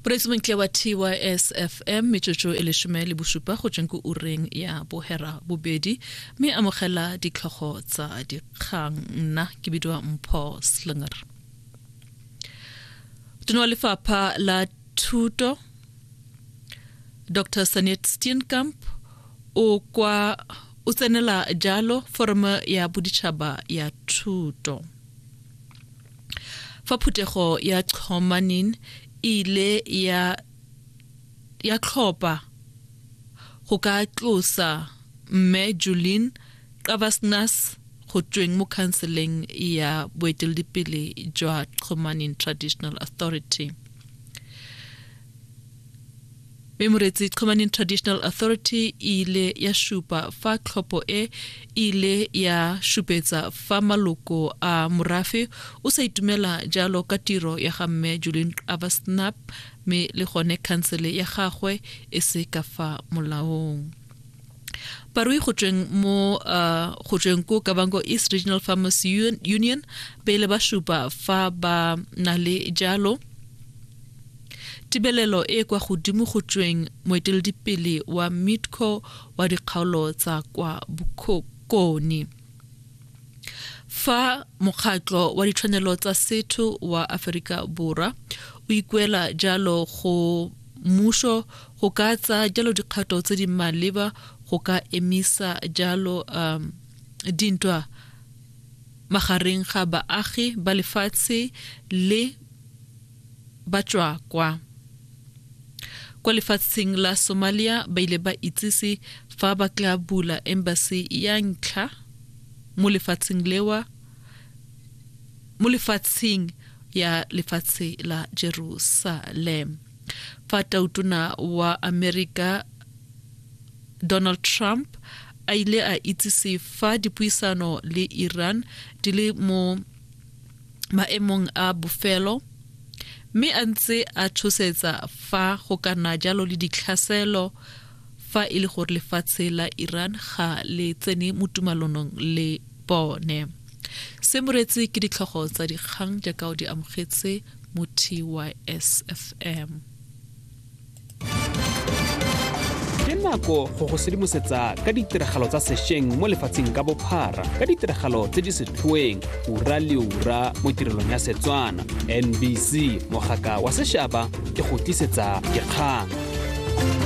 poresidente wa tysfm metsotso e lesome le bosupa go tsweng ko ureng ya bohera bobedi mme amogela ditlhogo tsa dikgang nna ke bidiwa mpho slinger tona wa lefapha la thuto dr sanet steenkamp o kwa o tsenela jalo foroma ya boditšhaba ya thuto Fa phuthego ya Chomanin e ile ya ya tlhopa go ka tlosa mme Julin Qabasnas go tsweng mo khanseleng ya boeteledipele jwa Chomanin Traditional Authority. Mme Moretsi Chomani Traditional Authority e ile ya supa fa tlhopho e ile ya supetsa fa maloko a morafe o sa itumela jalo ka tiro ya ga mme Julian Avasnap mme le gone khansele ya gagwe e se ka fa molaong. barui go tsweng mo uh, go tsweng ko kabanko east regional farmers union pele ba supa fa ba na le jalo tibelelo e kwa godimo go tsweng moeteledipele wa mitco wa dikgaolo tsa kwa bokoni fa mokgatlo wa ditshwanelo tsa setho wa aforika borwa o ikuela jalo go Mmušo go ka tsaya jalo dikgato tse di maleba go ka emisa jalo um, dintwa magareng ga baagi ba lefatshe le batswakwa kwa lefatsheng la somalia ba ile ba itsise fa ba tla bula embassy ya ntlha mo lefatsheng lewa mo lefatsheng ya lefatshe la Jerusalem fa tautona wa Amerika Donald Trump a ile a itsise fa dipuisano le Iran di le mo maemong a bofelo mme a ntse a tshosetsa fa go kana jalo le ditlhaselo fa e le gore lefatshe la Iran ga le tsene mo tumalonong le bone. Se moretse ke ditlhogo tsa dikgang jaaka o di amogetse mo TYSFM. Ke nako go go sedimosetsa ka ditiragalo tsa sešweng mo lefatsheng ka bophara ka ditiragalo tse di setlhoeng ura le ura mo tirelong ya Setswana. NBC mogaka wa sešaba e go tlisetsa dikgang.